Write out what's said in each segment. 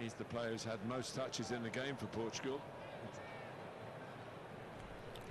He's the player who's had most touches in the game for Portugal.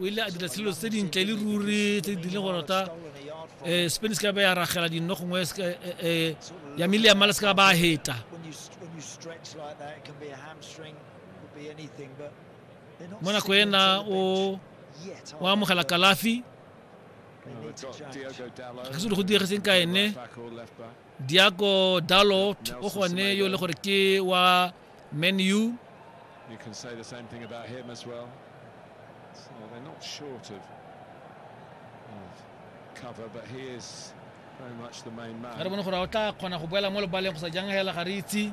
o ile a dira selo se dintle le ruri tse di leng gore ta um spanish ka ba ya ragela dinno gongwe um ya mele ya mala se ka ba a heta mo nako ena o o amogela kalafi ga se le go diregeseng ka ene Diaco Dalot o gone yo le gore ke wa Man U You can say the same thing about him as well. So they're not short of, of cover, but he is very much the main man. ga re bone gore o tla kgona go boela mo lebaleng go sa jang hela ga re itse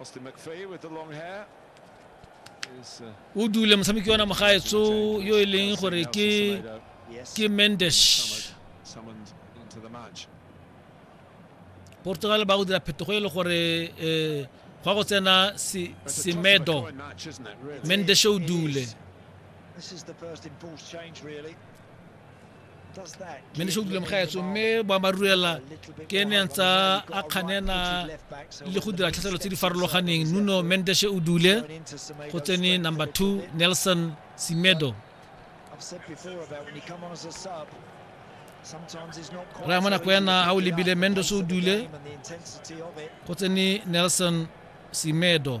Austin McVeigh with the long hair. o dule motshameki ona mogaetso yo e leng gore ke ke mendesh portugal ba go dira phetogo e le gore um gwa go tsena semedo mendesh o dule mme ne se utlwile mogaetso mme boammaaruri ela ke ne ntsa a kganena le go dira tlhatlhelo tse di farologaneng nuno mendeshe o dule go tsene number two nelson simedo raya mo nako ena ga o lebile mendos o dule go tsene nelson simedo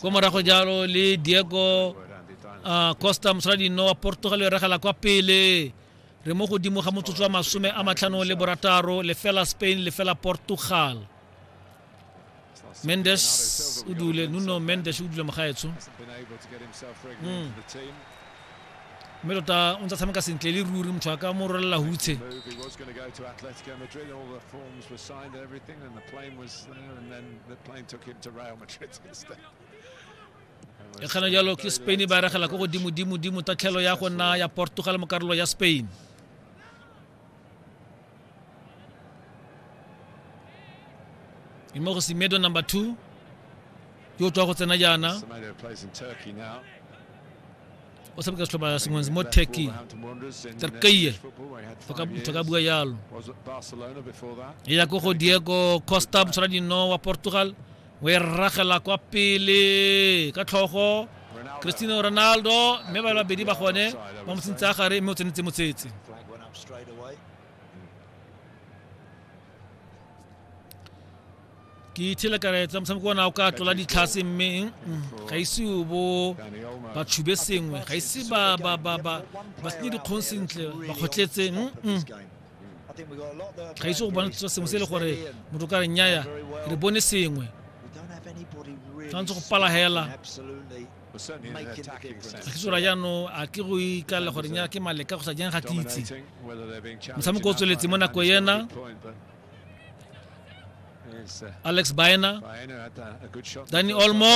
kwa morago jalo le diego uh, costa mosaladinno wa portugal e regela kwa pele re mo godimo ga motsotso wa masome a matlhano le borataro lefela spain lefela portugal mendes o dule nuno mendes o dule mogaetsho mm. mme tota o ntse tshameka sentle le ruri motho a ka mo rolela hutshe e kgana jalo ke spain e ba regela ko godimodimodimo tatlhelo ya go nna ya portugal mo karolo ya spain Imoro Semedo number 2 yo tswa go tsena jaana Semedo plays in Turkey now. o tshameka setlhopha sengwe mo Left Turkey Wolverhampton Wanderers in Turkey. Turkey. Football, where he had Toka- five toka years. bua jalo Was at Barcelona before that. e ya ko go diego costa motshwara dino wa portugal o e ragela kwa pele ka tlhogo Ronaldo. cristiano ronaldo mme ba babedi ba gone ba mo tsentse a gare mme o tsenetse motsetse Flag went up straight away. ke ithele karetsa motshameko ona o ka tlola ditlhase mme mm, ga ise o bo ba tshube sengwe ga ise ba ba ba ba ba senye dikgong sentle ba kgotletse mm, mm. ga ise go bona sengwe se e le gore motho ka re nnyaya re bone sengwe tshwanetse go pala hela tlhagisora jaanong a ke go ikalela gore nya ke maleka go sa jang ga ke itse motshameko o tsweletse mo nako ena alex baena danny olmo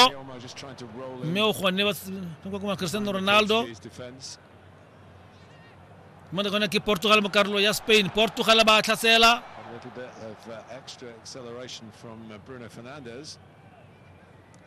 mme o gone ba cristiano ronaldo mo nako ena ke portugal mo karolo ya spain portugal ba tlhasela